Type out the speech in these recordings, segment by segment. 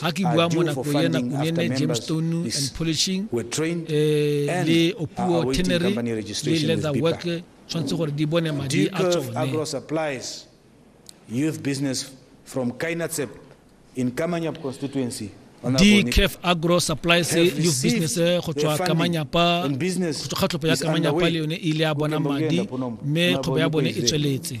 Ha ke bua mo nako ya Nakunene, Gemstone and Polishing eh, le Opuo Tannery le Leather Work tshwanetse gore di bone madi a tsone youth business from Kainatsep in Kamanyap constituency dcaf agro supplies youth business eh, go tswa kamanyapa go tswa kgatlhopo ya kamanyapa le yone e ile ya bona madi mme kgwebo ya bone e tsweletse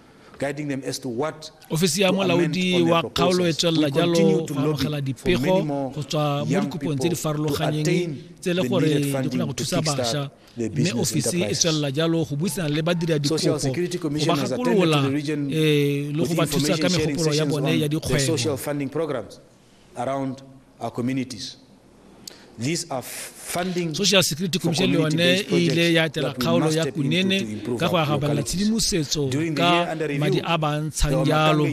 Ofisi ya Molaodi wa Kgaolo e tswelela jalo go amogela dipego go tswa mo dikopong tse di farologanyeng tse e le gore di kgona go thusa bašwa mme ofisi e tswelela jalo go buisana le badiradikopo go ba gakolola um le go ba thusa ka megopolo ya bone ya dikgwebo around our communities. These are funding social security commission le yone e ile ya etela kgaolo ya kunene ka go agabana tshedimosetso ka madi a ba ntshang jalo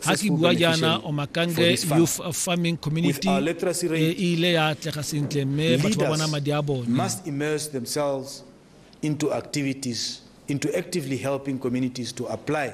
ga ke bua jaana omakange youth farming community e ile ya atlega sentle mme batho ba bona madi a bone into activities into actively helping communities to apply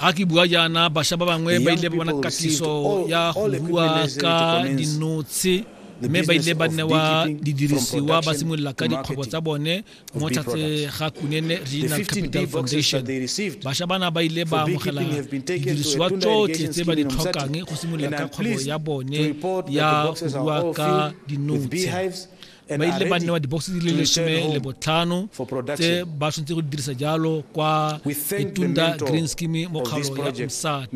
ga ke bua jaana bašwa ba bangwe ba ile ba bona katiso ya go bua ka dinotshe mme ba ile ba newa didirisiwa ba simolola ka dikgwebo tsa bone mo tlhatse ga kunene regional capital foundation bašwa bana ba ile ba amogela didirisiwa tsotlhe tse ba di tlhokang go simolola ka kgwebo ya bone ya go bua ka dinotshe ba ile ba newa dibokse di le lesome le botlhano tse ba tshwanetse go dirisa jalo kwa itunda green scheme mo kgaolo ya msati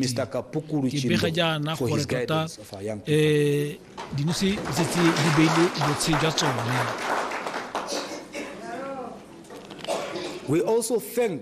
ke bega jaana gore tota um eh, dinose di setse di beile botshe jwa tsone We also thank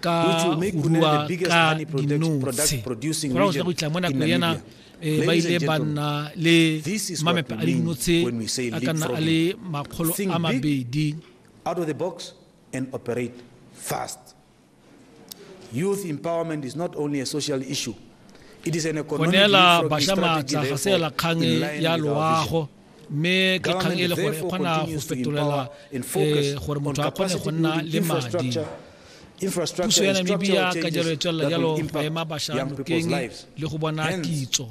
ka go rua ka dinotshi go ra go go itla mo nako yana Eh, ba ile ba nna le mamepe a dinotshe a ka nna a le makgolo a mabedi out of the box and operate fast youth empowerment is not only a social issue it is an economic go neela bašwa maatla ga se kgang ya loago mme ke kgang e le gore e kgona go fetolela eh, gore motho a kgone go nna le madi puso ya namibia ka jalo e tswelela jalo go ema bašwa nokeng le go bona kitso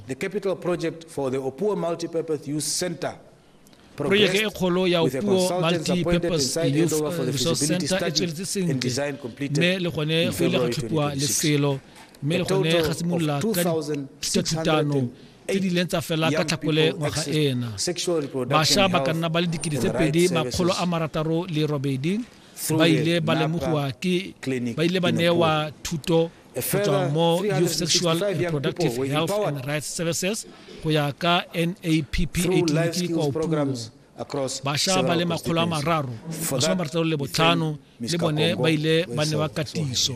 projeke e kgolo ya opuo multi-purpose youth resource center e tsweletse sentle mme le gone go ile ga tlhopiwa lefelo mme le gone ga simolola ka thutano tse di ileng tsa fela ka tlhakole ngwaga ena bašwa ba ka nna ba le dikete tse pedi makgolo a marataro le robedi ba ile ba lemogiwa ke ba ile ba newa thuto go tswa mo youth sexual reproductive health and rights services go ya ka nappa tleliniki kwa opuong bašwa ba le makgolo a mararo masome marataro le botlhano le bone ba ile ba newa katiso